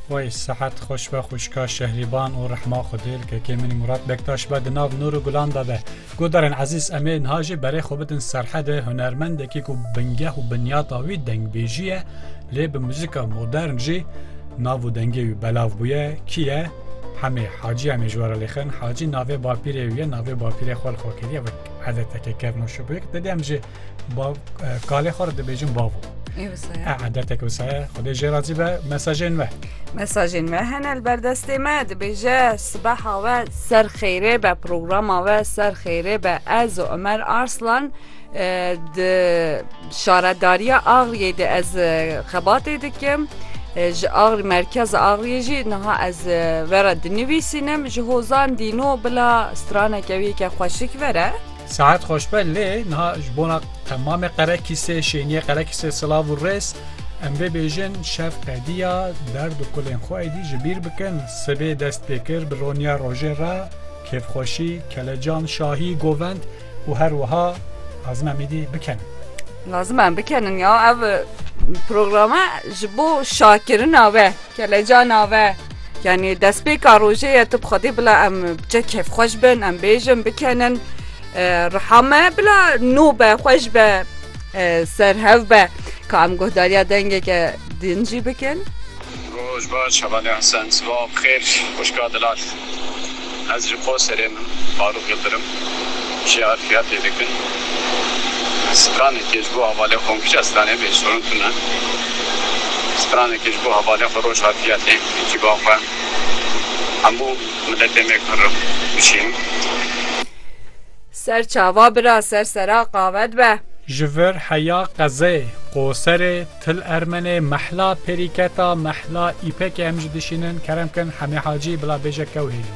Way sehet xweş be xwişka Şehrîban û rehma Xwedê li kekê min Murat Bektaş be di nav nûr û gulan de be. Guhdarên ezîz em ê niha jî berê xwe bidin Serhedê hunermendekî ku bingeh û binyata wî dengbêjî ye lê bi muzîka modern jî nav û dengê wî belav bûye kî ye Hemê Hacî em ê ji we re lêxin Hacî navê bapîrê wî ye navê bapîrê xwe li xwe kiriye wek edeteke kevnoşibûyek didê em jî Bav, e, kalê xwe re dibêjin bavo. Ê wisa ye? E, edetek wisa ye. Xwedê jê razî be mesajên me. Mesajên me hene li ber destê me dibêje sibeha we ser xêrê be programa we ser xêrê be ez û Ömer Arslan e, di şaredariya Axriyê de ez e, xebatê dikim E, ji Axri merkeza Axriyê jî niha ez e, vera dinivîsînim ji hozan dîno bila straneke wî ke xweşik vere Sehet xoşbe lê niha ji bona qemamê qerekîsê, şêniyê qerekîsê silav û rêz. Em vê bêjin şev qediya derd û kulên xwe êdî ji bîr bikin. Sibê dest pê kir bi roniya rojê re, kêfxweşî, kelecan, şahî, govend û her wiha lazim em êdî bikenin. Lazim em bikenin ya ev programa ji bo şakirina we, kelecana we, Yanî destpêka rojê ye tu bi xwedî bila em bi çek kêfxweş bin em bêjin bikenin riha me bila nû be xweş be serhev be ka em guhdariya dengeke din jî bikin. Roj baş hevalê Hesen sibav xêr xwişka dilal. Ez ji Qoserê me, Farûq Yildirim jê arfiyatê dikim. Stranekê ji bo hevalê xwe kija stranê bê sorun tune. Stranekê ji bo hevalê xwe roj arfiyatê ekiba xwe hemû miletê me kirim bişînim. Ser çava bira ser sera qavet be. Ji vir heya qezeyê Qoserê. Til Ermenê mehla perîketa mehla îpekê em jî dişînin kerem kin hemê hacî bila bêje kewrînê.